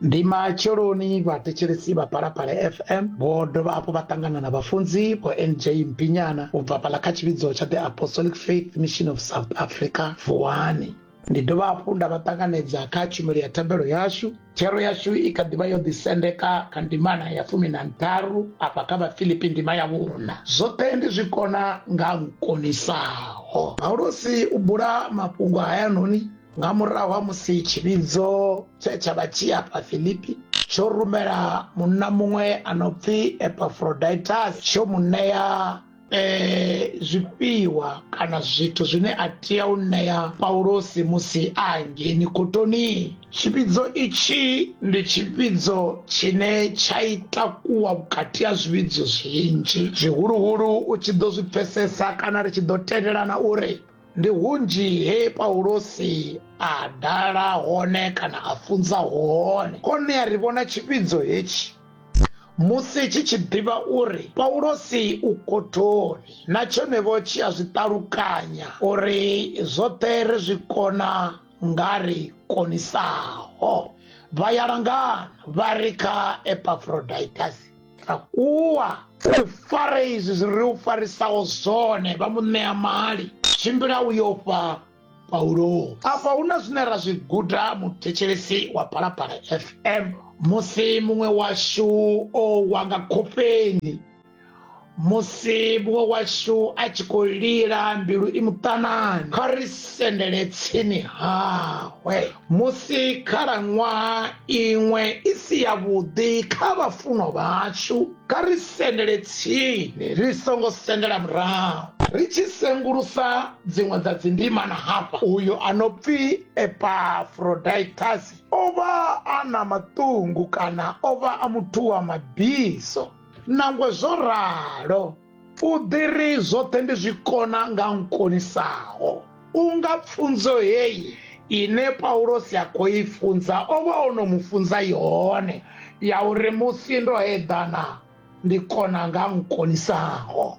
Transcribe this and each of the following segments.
ndi matsheloni vhathetshelesi vha phalaphala fm vho dovha hafhu vha ṱangana na vhafunzi vho nj mpinyana u bva fhala kha tshivhidzo tsha the apostolic faith mission of south africa vuwani ndi dovha hafhu nda vha ṱanganedza kha tshumelo ya thabelo yashu thero yashu i kha ḓivha yo ḓisendeka kha ndimana ya fumi na ntharu afha kha vhafilipi ndima ya vhuna zwoṱhe ndi zwi kona nga nkonisaho paulosi u bula mafhungo hayanoni nga murahu ha musi tshivhidzo tshe tsha vha tshi afha filipi tsho rumela munna muṅwe a no pfi epafroditus tsho mu ṋea um zwifhiwa kana zwithu zwine a tea u ṋea paulosi musi a hangeini kotoni tshivhidzo itshi ndi tshivhidzo tshine tsha ita kuwa vhukati ha zwivhidzo zwinzhi zwihuluhulu u tshi ḓo zwi pfesesa kana ri tshi ḓo tendelana uri ndi hunzhi he paulosi a dala hone kana a funza hone hone a ri vhona tshivhidzo hetshi musi tshi tshi ḓivha uri paulosi u kothoni na tshonevho tshi a zwi ṱalukanya uri zwoṱhe ri zwi kona nga ri konisaho vha ya langana vha ri kha epafroditasi takuwa u fare izwi zwi ri u farisaho zwone vha mu ṋea mali tshimbila u yo fha paulo afha hu na zwine ra zwi guda muthetshelesi wa phalaphala fm musi muṅwe washu o wa nga khofheni musi muṅwe washu a tshi khou lila mbilu i muṱanani kha ri sendele tsini hawe musi khalaṅwaha iṅwe i si yavhuḓi kha vhafunwa vhashu kha ri sendele tsini ri songo sendela murahu ri tshi sengulusa dziṅwe dza dzindimana hafha uyo a no pfi epafroditasi o vha a na maṱungu kana o vha a muthu wa mabiso nangwe zwo ralo u ḓi ri zwoṱhe ndi zwi kona nga nkonisaho u nga pfunzo heyi ine paulosi a khou i funza o vha o no mu funza yone ya uri musi ndo eḓana ndi kona nga nkonisaho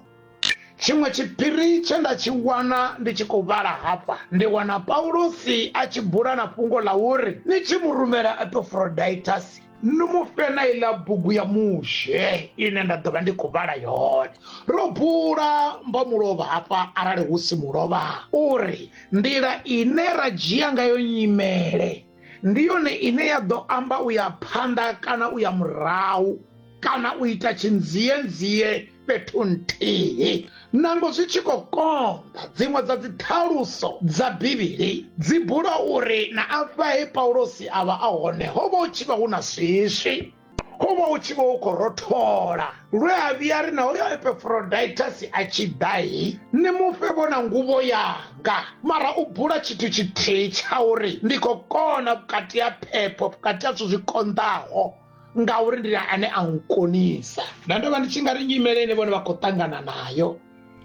tshiṅwe tshiphiri tshe nda tshi wana ndi tshi khou vhala hafha ndi wana paulosi a tshi bula na fhungo ḽa uri ni tshi mu rumela epafroditasi ni mu fhe na iḽa bugu ya mushe ine nda ḓo vha ndi khou vhala yone ro bula mbo mulovha hafha arali hu si mulovha uri nḓila ine ra dzhia ngayo nyimele ndi yone ine ya ḓo amba u ya phanḓa kana u ya murahu kana u ita tshinzienzie fhethu nthihi nango zwi tshi khou konḓa dziṅwe dza dziṱhaluso dza bivhili dzi bula uri na afha he paulosi a vha a hone ho vha hu tshi vha hu na swiswi ho vha hu tshi vha hu khou rothola lwe a vhuya ri na uyo epefroditasi a tshi ḓahi ni mufhe vhona nguvho yanga mara u bula tshithu tshithihi tsha uri ndi khou kona vhukati ha phepho vhukati ha zwithu zwi konḓaho ngauri ndi ane a nkonisa nda ndo vha ndi tshi nga ri nyimele ine vhone vha khou ṱangana nayo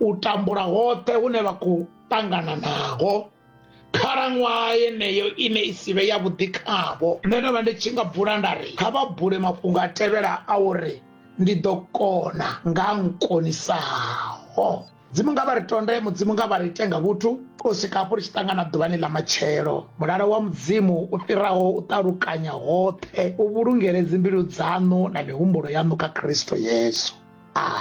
u tambula hoṱhe hune vha khou ṱangana naho khalaṅwaha yeneyo ine i sivhe ya vhuḓi khavho nṋe ndo vha ndi tshi nga bula nda ri kha vha bule mafhungo a tevhela a uri ndi ḓo kona nga nkonisaho mudzimu nga vha ri tonde mudzimu nga vha ri ite nga vhuthu u swika hafho ri tshi ṱangana ḓuvhani ḽa matshelo mulalo wa mudzimu u fhiraho u ṱalukanya hoṱhe u vhulungele dzimbilu dzaṋu na mihumbulo yaṋu kha khristo yesu amen